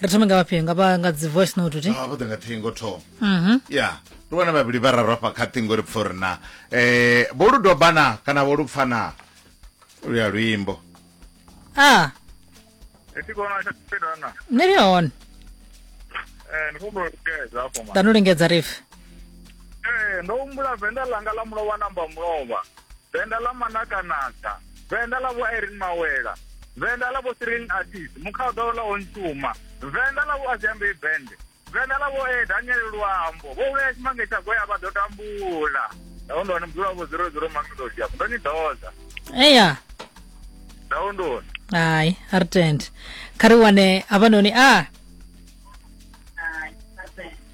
ri thome nga vhafhio nga vha nga dzi voice note ti Ah, vho ḓa nga ṱhingo thoma mhm ya ndi vhona vhavhili vha raro hafha kha ṱhingo ri pfa uri na eh vho lu dobana kana vho lu pfana luya luimbo ah Eti kona tsha tsena na. ni ri hone Eh ndi khombo keza afho ma. ḓa no lingedza rife Eh ndo humbula venda langa ḽa mulovha namba mulovha. Venda ḽa manakanaka. Venḓa ḽa vho Irene Mawela, Venḓa ḽa vho Cyril Atis, Mukhaḓo ḽa Ontuma, Venḓa ḽa vho Aziambei Bende, Venḓa ḽa vho E Daniel Luambo, vho vhea tshimange tsha goya vha ḓo tambula. Ndawondoni mudzula wa vho zero zero Mamelodi afho ndo ni ḓodza. eya Ndawondoni. hayi a ri tende kha ri wane havhanoni a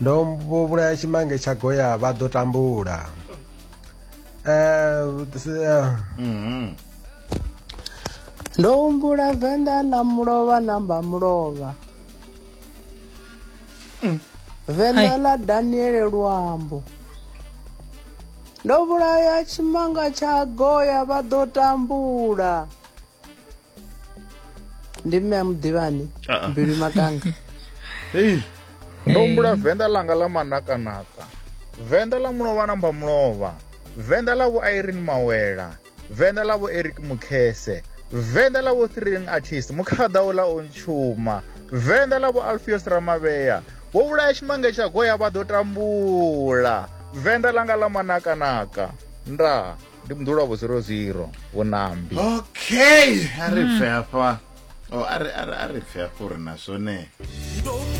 ndo vho vhulaya tshimange tsha goya vha ḓo tambula eh, eh. mhm. ndo humbula venḓa na mulovha namba mulovha mm. venḓa ḽa daniele luambo ndo vhulaya tshimanga tsha goya vha ḓo tambula ndi mme a muḓivhani ah, ah. mbilu makanga hei ndo humbula venḓa langa ḽa manakanaka venḓa ḽa mulovha na mba mulovha venḓa ḽa vho irene mawela venḓa ḽa vho eric mukhese venḓa ḽa vho thrilling artist mukhaḓa u ḽa o ntshuma venḓa ḽa vho alfios ramavhea vho vhulaya tshimange tsha goya vha ḓo tambula venḓa ḽanga ḽa manakanaka ndaa ndi mdula vho 00 vho nambi okay a ri pfe hafha o a ri a ri a ri pfe hafha uri na zwone